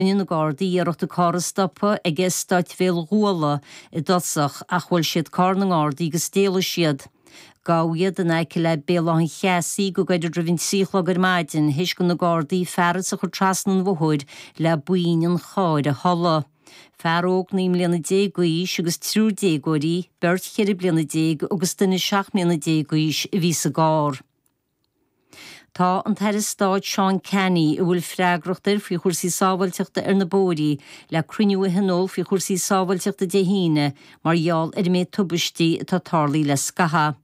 Rinne na Gardaí iarracht an carr a stopadh ag Eastát Bhéal Guala i dtosach ach bhuail siad carr na nGardaí agus d'éalaigh siad. Gabhadh iad in aice le Béal Átha an Cheasaigh go gairid roimh an trí a chlog ar maidin théis do na Gardaí fearas a chur trasna an bhóthair le buinn an chairr a tholladh. Fear óg naoi mbliana déag d'aois agus triúr déagóirí, beirt cheithre bliana déag agus duine seacht mbliana déag d'aois, a bhí sa gcarr. Tá an tAire Stáit Seán Canney, a bhfuil freagracht air faoi chúrsaí sábháilteachta ar na bóithrí, le cruinniú a thionól faoi chúrsaí sábháilteachta Dé hAoine mar gheall ar an méid tubaistí atá tarlaigh le scaitheamh.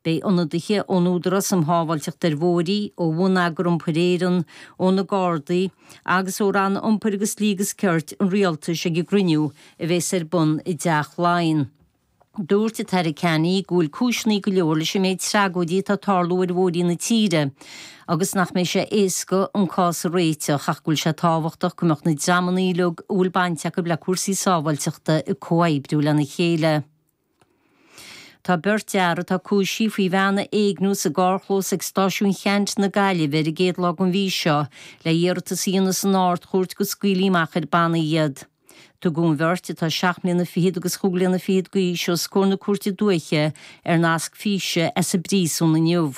Beidh ionadaithe ón Údarás um Shábháilteacht ar Bhóithrí, ó Bhonneagar Iompair Éireann, ó na Gardaí agus ó Ranna Iompair agus Dlí agus Cirt an Rialtais ag an gcruinniú a bheas ar bun i dTeach Laighean. Dúirt an tAire Canney go bhfuil cúiseanna go leor leis an méid tragóidí atá ag tarlú ar bhóithrí na tíre agus nach mbeidh sé éasca an cás a réiteach ach go bhfuil sé tábhachtach go mbeadh na dreamanna uilig a bhfuil baint acu le cúrsaí sábháilteachta ag comhoibriú lena chéile. Tá beirt fhear atá cúisithe faoi bhean a éigniú sa gcarrchlós ag Stáisiún Cheannt na Gaillimhe ar an gcéad lá den mhí seo le hiarratas a dhéanamh san Ard-Chúirt go scaoilfí amach ar bannaí iad. Tugadh an bheirt, atá seacht mbliana fichead agus chúig bliana fichead d'aois, os comhair na Cúirte Dúiche ar nasc físe as an bpríosún inniu.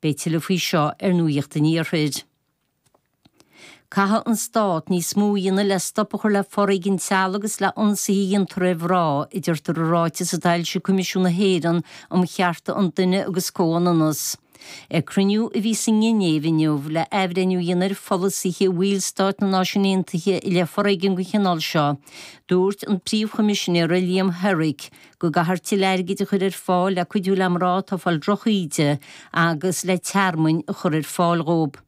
Beidh tuilleadh faoi seo ar Nuacht an Iarthair. Caithfidh an Stát níos mó a dhéanamh le stop a chur le foréigean teaghlaigh agus le hionsaithe a dhéantar ar mhná, a deirtear i ráiteas atá foilsithe ag Coimisiún na hÉireann um Chearta an Duine agus Comhionannas. Ag cruinniú a bhí sa nGinéiv inniu le athbhreithniú a dhéanamh ar pholasaithe bhaill stáit na Náisiún Aontaithe i leith foréigean den chineál seo, dúirt an Príomh-Choimisinéir Liam Herrick go gcaithfear tuilleadh airgid a chur ar fáil le cuidiú le mná atá ag fáil drochíde agus le tearmainn a chur ar fáil dhóibh.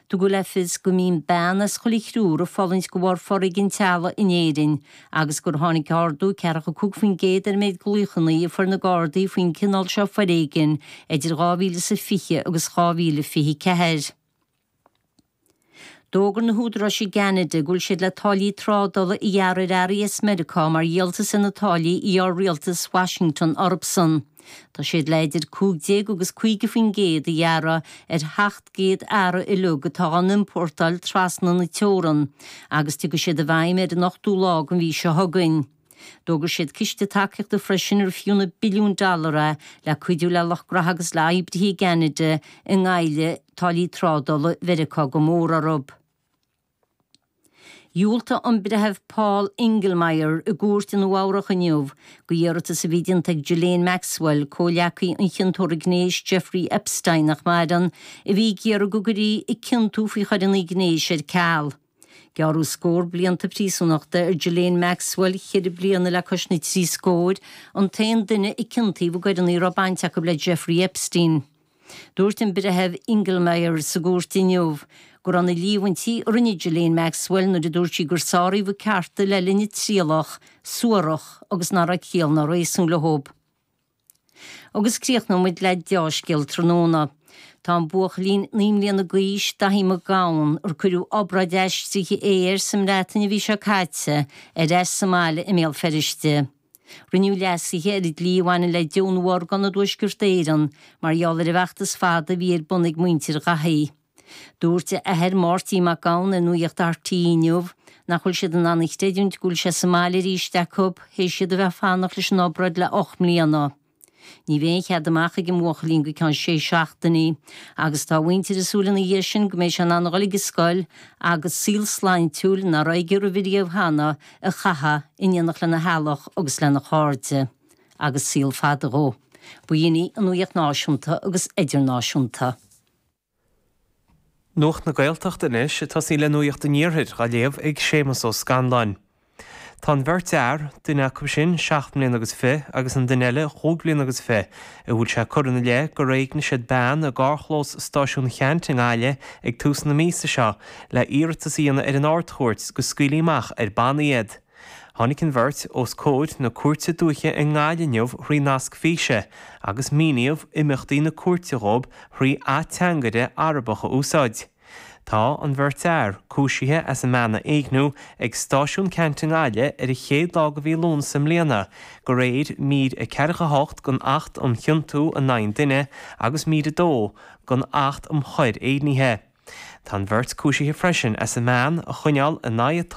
Tugadh le fios go mbíonn bean as chuile thriúr ag fulaingt de bharr foréigean teaghlaigh in Éirinn agus gur tháinig ardú 45% ar an méid glaochanna a fuair na Gardaí faoin gcineál seo foréigin idir 2000 is a 20 agus 2024. D'fhógair na húdaráis i gCeanada go bhfuil siad le táillí trádála a ghearradh ar earraí as Meiriceá mar dhíoltas ar na táillí a ghearr rialtas Washington orthusan. Tá siad le idir 15 agus 50 faoin gcéad a ghearradh ar sheacht gcéad earra uilig atá á n-iompórtáil trasna na teorann agus tiocfaidh siad i bhfeidhm ar an ochtú lá den mhí seo chugainn. D'fhógair siad ciste tacaíochta freisin ar fiú na billiúin dollar é le cuidiú le lucht graithe agus le oibrithe i gCeanada a ngoillfidh táillí trádála Mheiriceá go mór orthu. Dhiúltaigh an Breitheamh Paul Engelmayer i gcúirt i Nua-Eabhrac inniu d'iarratas a bhí déanta ag Ghislaine Maxwell, comhghleacaí an chiontóra gnéis Jeffrey Epstein, nach maireann, a bhí ag iarraidh go gcuirfí a ciontú faoi choireanna gnéis ar ceal. Gearradh scór blianta príosúnachta ar Ghislaine Maxwell, ceithre bliana le cois na trí scóir, an t-aon duine a ciontaíodh i gcoireanna a raibh baint acu le Jeffrey Epstein. Dúirt an Breitheamh Engelmayer sa gcúirt inniu go raibh na líomhaintí a rinne Ghislaine Maxwell nuair a dúirt sí gur sáraíodh a cearta le linn a trialach suarach agus nach raibh ciall ná réasún leo. Agus críochnóimid le deá-scéal tráthnóna. Tá an buachaillín naoi mbliana d'aois, Dáithí Mac Gabhann, ar cuireadh obráid aistrithe ae air sa mBreatain an mhí seo caite, ar ais sa mbaile i mBéal Feirste. Rinneadh leasuithe ar an dlí a bhaineann le deonú orgán i dTuaisceart Éireann mar gheall ar an bhfeachtas fada a bhí ar bun ag muintir Dháithí. Dúirt a athair Máirtín Mac Gabhann ar Nuaíocht RTÉ inniu nach bhfuil siad in ann a chreidiúint go bhfuil sé sa mbaile arís acu, théis iad a bheith ag fanacht leis an obráid le ocht mbliana. Ní bheidh aon chead amach ag an mbuachaillín go ceann sé seachtainí agus tá a mhuintir ag súil ina dhiaidh sin go mbeidh sé in ann a dhul ag an scoil agus saol sláintiúil, nach raibh aige roimhe riamh cheana, a chaitheamh, in éineacht lena theaghlach agus lena chairde. Agus saol fada dhó. Ba shin é an Nuaíocht Náisiúnta agus Idirnáisiúnta. Nuacht na Gaeltachta anois, tosaíonn le Nuaíocht an Iarthair á léamh ag Séamus Ó Scanláin. Tá an bheirt fhear, duine acu sin seacht mbliana agus fiche agus an duine eile chúig bliana agus fiche, a bhfuil sé curtha ina leith gur éignigh siad bean i gcarrchlós Stáisiún Cheannt i nGaillimh ag tús na míosa seo le hiarratas a dhéanamh ar an Ard-Chúirt go scaoilfí amach ar bannaí iad. Tháinig an bheirt os comhair na Cúirte Dúiche i nGaillimh inniu thrí nasc físe agus míníodh imeachtaí na cúirte dhóibh thrí ateangaire Arabach a úsáid. Tá an bheirt fhear cúisithe as a mbean a éigniú ag Stáisiún Ceannt i nGaillimh ar an chéad lá de mhí Lúnasa i mbliana de réir mír a ceathracha a hocht den Acht um Chiontú in Aghaidh an Duine agus mír a dó den Acht um Choir Éignithe. Tá an bheirt cúisithe freisin as a mbean a choinneáil in aghaidh a tola.